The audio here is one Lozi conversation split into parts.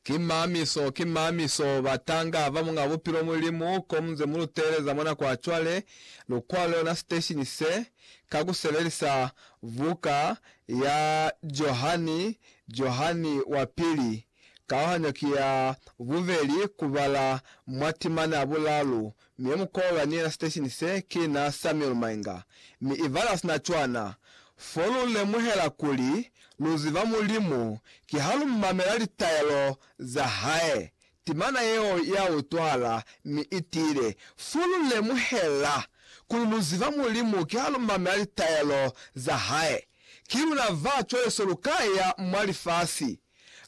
Ki mamiso, ki mamiso, batanga ba Muñ'a Bupilo Mulimu, ko muze mu lu teeleza mwa nako ya cwale, lu kwale ona siteshini se, ka ku sebelisa buka ya Johani, Johani wa Pili, kauhanyo ki ya bubeli, ku bala mwa timana ya bulalu, Mi mu kola ni yena siteshini se ki na Samuel Mainga, mi i bala sina cwana, fo lu lemuhela kuli lu ziba Mulimu ki ha lu mamela litaelo za Hae. Timana yeo ya utwahala mi i tiile, fo lu lemuhela kuli lu ziba Mulimu ki ha lu mamela litaelo za Hae. Ki luna ba cwale so lu ka ya mwa lifasi.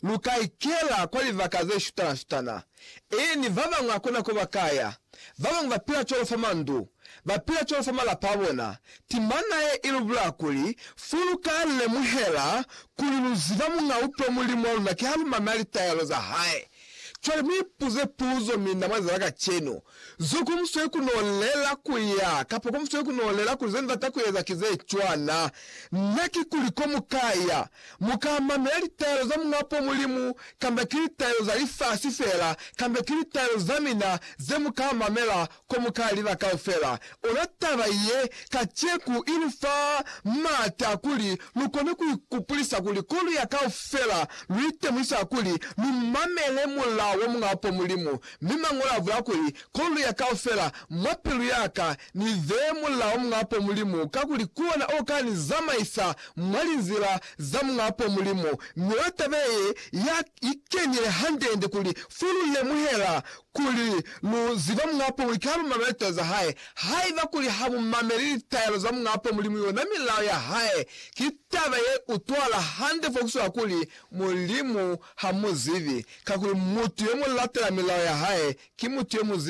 Lu ka ikela kwa libaka ze shutana-shutana. Eeni, ba bañwi hakuna ko ba ka ya. Ba bañwi ba pila cwalo fa mandu. Ba pila cwalo fa malapa a bona. Timana ye i lu bulaya kuli, Fo lu ka lemuhela kuli lu ziba Muñ'a Upe, Mulimu wa luna, kiha lu mamela litaelo za Hae. Cwale mu ipuze puzo, Mi na mweza za kacenu zo ku musweli ku no lela ku ya, kapa ku musweli ku no lela kuli ze nzata ku eza ki ze cwana na? Kikuli ko mu ka ya, mu ka mamela litaelo za Muñapo Mulimu, kamba ki litaelo za lifasi fela, kamba ki litaelo za mina ze mu ka mamela Ko mu ka liba kaufela, ona taba ye kaceku i lu fa m'ata kuli lu kone ku ikupulisa kuli ko lu ya kaufela, lu itemuisa kuli lu mamele mulao wa Muñ'a Apo Mulimu. Mi Mañolo a bula kuli, Ko lu ya kaufela, mwa pilu ya ka, ni beye mulao wa Muñ'a Apo Mulimu, kakuli ku ona o ka ni zamaisa mwa linzila za Muñ'a Apo Mulimu. Mi ona taba ye ya ikenile hande-hande kuli fo lu lemuhela Kuli, Lu ziba Muñ'a Apo Mulimu ka luma lwa litaelo za Hae. Haiba kuli ha mu mameli litaelo za Muñ'a Apo Mulimu yona milao ya Hae, ki taba ye utwahala hande fo kuswela kuli Mulimu ha mu zibi, kakuli mutu yo mu latela milao ya Hae ki mutu yo mu zibi.